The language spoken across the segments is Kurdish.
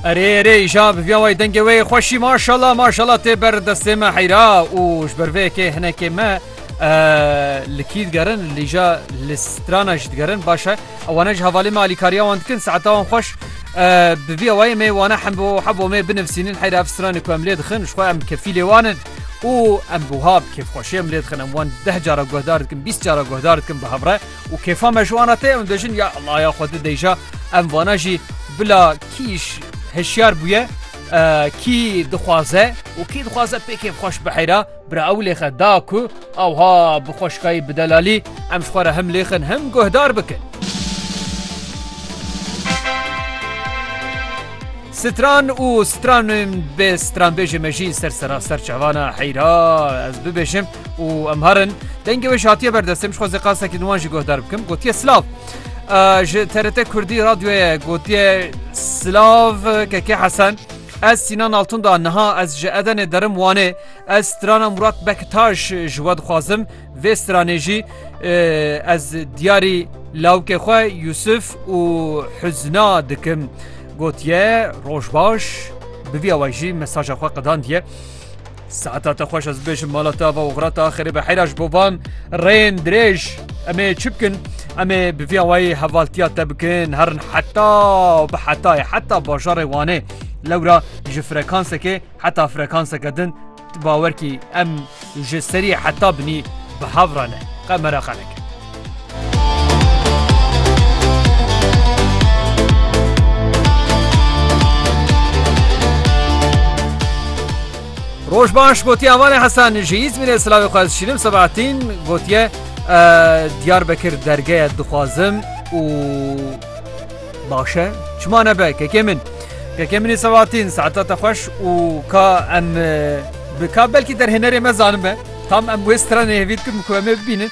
Erê erê îja bi viya wayî dengê wê xweşî maşala maşala tê ber destê me heyra û ji ber vê yekê hinekê me li kî digerin lîja li strana jî digerin baş e ewane ji hevalê me alîkariya wan dikin saeta wan xweş bi viya wayê me wana hem bo he bo me binivsînin heyra ev stranê ku em lê dixin ji xwe em kefî lê wanin û em buha bi kêfxweşê em lê dixin em wan deh cara guhdar dikin bîst cara guhdar dikin bi hevre Û kêfa me ji wana te ew dejin ya laya xwe di deyja em vana jî bila kîş hişyar bûye kî dixwaze û kî dixwaze pêkê xweş biheyra bira ew lêxe da ku ewha bi xweşkayî bi delalî em ji xwe re him lêxin him guhdar bikin. Stran û stranên bê stranbêjê me jî ser seraser çavana heyra ez bibêjim û em herin dengê wê ji hatiye berdestim ji xwezê qasekî nuwan jî guhdar bikim gotiye silav. Ji TRT Kurdî radyoye gotiye silav kekê Hesen. Ez Sinan Altun da niha ez ji Edenê derim Wanê ez strana Murat Bektaş ji we dixwazim vê stranê jî ez diyarî lawkê xwe Yusuf û huzna dikim gotiye roj baş bi vî awa jî mesaja xwe qedandiye. Saeta te xweş ez bibêjim mala te ava oxira te axirê be heyra ji bo van rêyên dirêj em ê çi bikin em ê bi vî awayî hevaltiya te bikin herin heta bi hetayê heta bajarê wanê lewra ji frekansekê heta frekanseke din bawerkî em ji serî heta binî bi hev re ne qe meraqe neke Roj baş gotiye avanê Hesan ji İzmirê silavê xwe ez şînim Sebahatîn gotiye Diyarbekir dergeye dixwazim û başe çima nebe kekê min. Kekê minî Sebahatîn saeta te xweş û ka em bi ka belkî derhênerê me zanin be. Tam em wê stranê hêvî dikin ku em ê bibînin.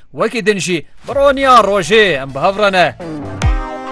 Wekî din jî bi roniya rojê em bi hev re ne.